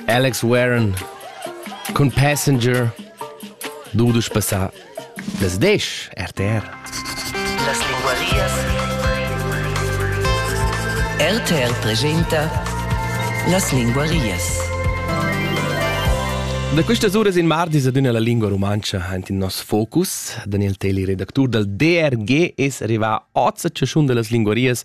Alex Warren cun Passenger dudesch passà das Desch RTR. Las linguarias. RTR presenta Las linguarias. Da questas uras in mardis ad una la lingua rumantscha ant in nos focus. Daniel Teli, redactur dal DRG, es rivà oz a chaschun da las linguarias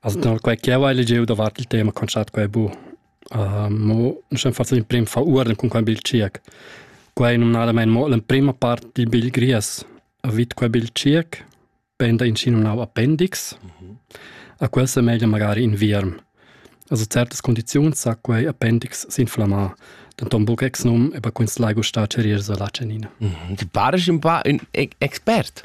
Also da quei che jau hai legiu davart il tema concert quei bu. Uh, mo nus haben fatto l'emprim veruorden con quel bil circ. Quei è normalmente mo l'emprima parte dil bil gries. Vid quel bil circ penda in sino nau appendix. Mm -hmm. A quel se meglio magari in vierm. Also certas condizioni sa quei appendix s'inflammar. Denton buc ex num, aber kunst lai gustar cerir so la cenina. Mm -hmm. Ti pares un pa un expert.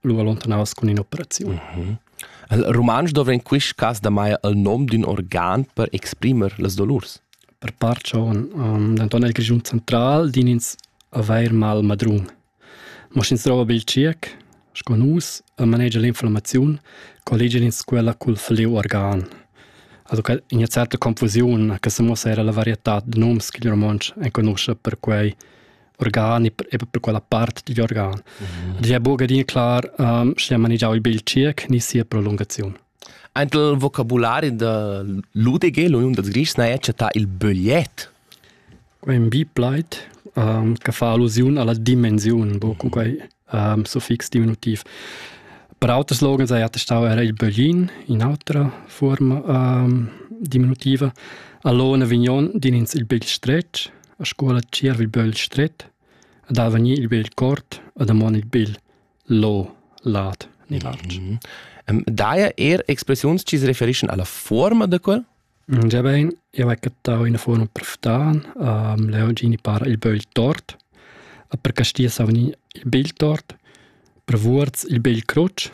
lu allontanaus cun in'operaziun. Mhm. Il romansch dovra in quist cas da mai il nom d'ün organ per exprimer las dolurs. Per part schon. Um, denton el Grischun central din ins avair mal madrun. Mo sch'ins drova bil circ, sco nus, e manegia l'inflammaziun, colligin ins quella cul fliu organ. Also che in una certa confusione che se muossa era la varietà de noms che il romansch enconusce per quei organ e per, per quella part digl organ. Mm. Ed è buca din clar, um, sche manigiau il bil circ ni sia prolungaziun. Ant il vocabulari da l'UDG, l'Uniun da Grischs, na è chattà il bögliet. Quei è un bipleit um, che fa allusiun alla dimensione, boh, quei um, suffix diminutiv. Per auter slogans è attestau era il böglin in autra forma um, diminutiva. Allora vignon din ins il begl stretg, a scuola tschierv il bögl stret, ad avanir il begl cort, ad amon il begl lo lat ni large. Mm -hmm. Um, daja er expressiuns ci si referiscono alla forma da quel? Giabain, jeu hai cattau ina fuorma per ftan. leu gini para il bögl tort. Per castier sa vegnir il bel tort. Per vuorz il bel crutsch.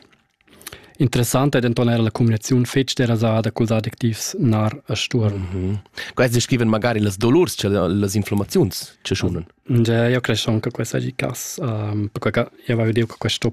Interessant ei denton era la cumbinaziun fetg derasada culs adjectivs nar e stuorn. Quels descriven magari las dolurs, cioè las inflammaziuns che sunan. Ja, io credo anche che questa è il caso, perché io avevo detto che questo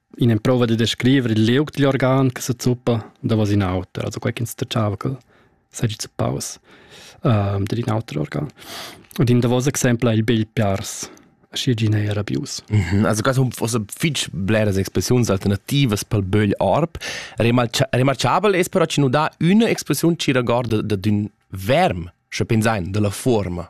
In'emprova da descrivere il liug digl organ che se zuppa davos in auter, also quei ch'instacciava che seigi zuppaus ehm dad in auter organ. Ed in davos exempel è il begl piars, schi gin ei era bius. Mhm, Also quasi forse fitg bleras expressiuns alternativas pel bögl arp. Remarcha- Remarchabel es però chi nu dà üna expressiun chi regorda ad ün verm, sche pensain, dalla fuorma.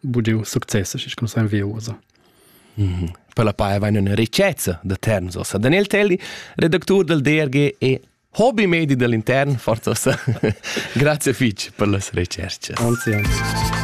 budiu success schi cum san viusa. Mm -hmm. Per la paia vain üna ricchezza da terns ossa. Daniel Telli, redactur del DRG e hobby-medi dell'intern, forza ossa. Grazie fich per las recerches. Anzi, anzi.